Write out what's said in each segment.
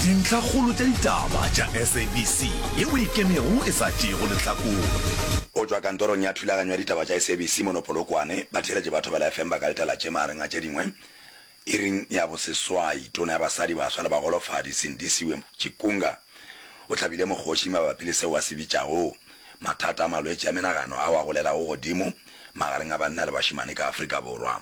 Dintlhakgolo tša ditaba tša SABC ye o ikemego e sa tšeego lehlakore. Go tšwa kantorong ya thulaganyo ya ditaba tša SABC mono Polokwane, batheeletše ba Thobela FM ba ka letela tše magareng a tše dingwe, Iring ya boseswai, Tona ya Basadi, Baswa le Bagolofadi Sindisiwe Chikunga o hlabile mokgoši mabapi le seo a se bitšago mathata a malwetši a menagano ao a golelago godimo magareng a banna le bašemane ka Afrika Borwa.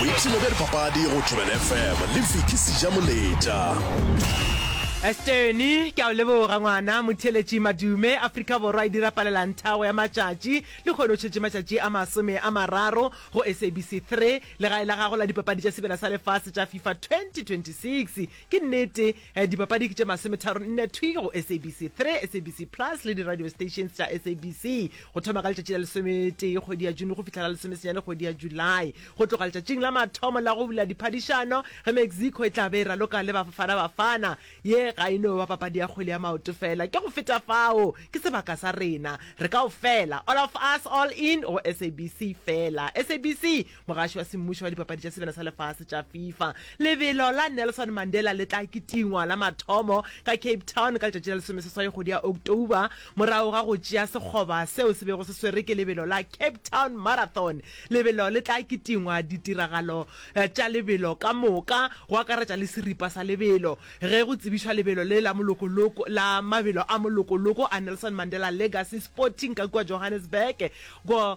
boipshino bja dipapadi go thobela fm le fiki seja moletša Esteni ke a o leboga ngwana motheletši madume Afrika Borwa e dira palelang thago ya matšatši le kgone o tšhetše matšatši a masome a mararo go SABC 3 legae la gago la dipapadi tša sebjana sa lefase tša FIFA 2026 ke nnete Dipapadi ke tše masometharo nne thwi go SABC 3, SABC Plus le di-radio stations tša SABC go thoma ka letšatši la lesometee kgwedi ya June go fihla la lesomesenyane kgwedi ya July. Go tloga letšatšing la mathomo la go bula diphadišano ge Mexico e tla be e raloka le Bafana Bafana, ye ga e no ba papadi ya kgwele ya maoto fela. Ke go feta fao, ke sebaka sa rena re kaofela, all of us, all in go SABC fela. SABC Mogaši wa semmušo wa dipapadi tša sebjana sa lefase tša fifa lebelo la Nelson Mandela le tla kitingwa la mathomo ka Cape Town ka letšatši la lesomeseswai kgwedi ya October morago ga go tšea sekgoba seo se bego se swerwe ke lebelo la Cape Town Marathon. Lebelo le tla kitingwa ditiragalo eh, tša lebelo ka moka go akaretša le seripa sa lebelo ge go tsebišwa lebelo le la molokoloko la mabelo a molokoloko a Nelson Mandela Legacy Sporting ka kua Johannesburg go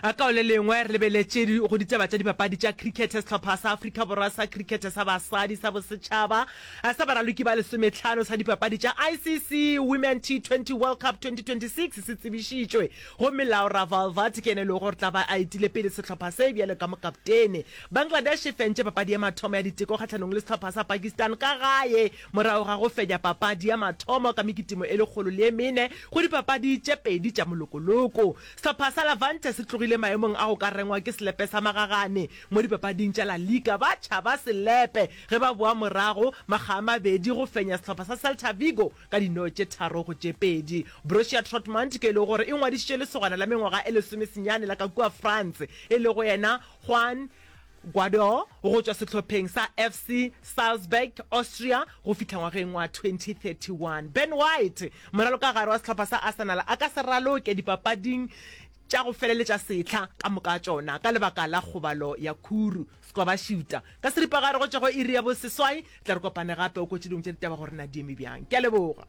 Ka o le lengwe re lebeletše go ditaba tša dipapadi tša crickete sehlopha sa Afrika Borwa sa crickete sa basadi sa bosetšhaba sa baraloki ba lesometlhano sa dipapadi tša ICC Women T20 World Cup 2026 se tsebišitšwe gomme Laura Valvati ke yena e lego gore tla ba a etile pele sehlopha se bjalo ka mokaptene. Bangladesh e fentše papadi ya mathomo ya diteko kgahlanong le sehlopha sa Pakistan ka gae morago ga go fenya papadi ya mathomo ka mekitimo e lekgolo le e mene go dipapadi tše pedi tša molokoloko. Sehlopha sa Levante se tlogile maemong a go ka rengwa ke selepe sa magagane mo dipapading tša La Liga ba tšhaba selepe ge ba boa morago makga a mabedi go fenya sehlopha sa Celta Vigo ka dino tše tharo go tše pedi. Borussia Trotmund ke e lego gore e ngwadišitše lesogana la mengwaga e lesomesenyane la ka kua France e lego yena Juan Guardiola go tšwa sehlopheng sa FC Salzburg, Austria, go fihla ngwageng wa 2031. Ben White, moralokagare wa sehlopha sa Arsenal, a ka se raloke dipapading tša go feleletša sehla ka moka tšona ka lebaka la kgobalo ya khuru. Squabashooter, ka seripagare go tšwa go iri ya boseswai, tla re kopane gape o kwetše dingwe tša ditaba gore na di eme bjang. Ke a leboga.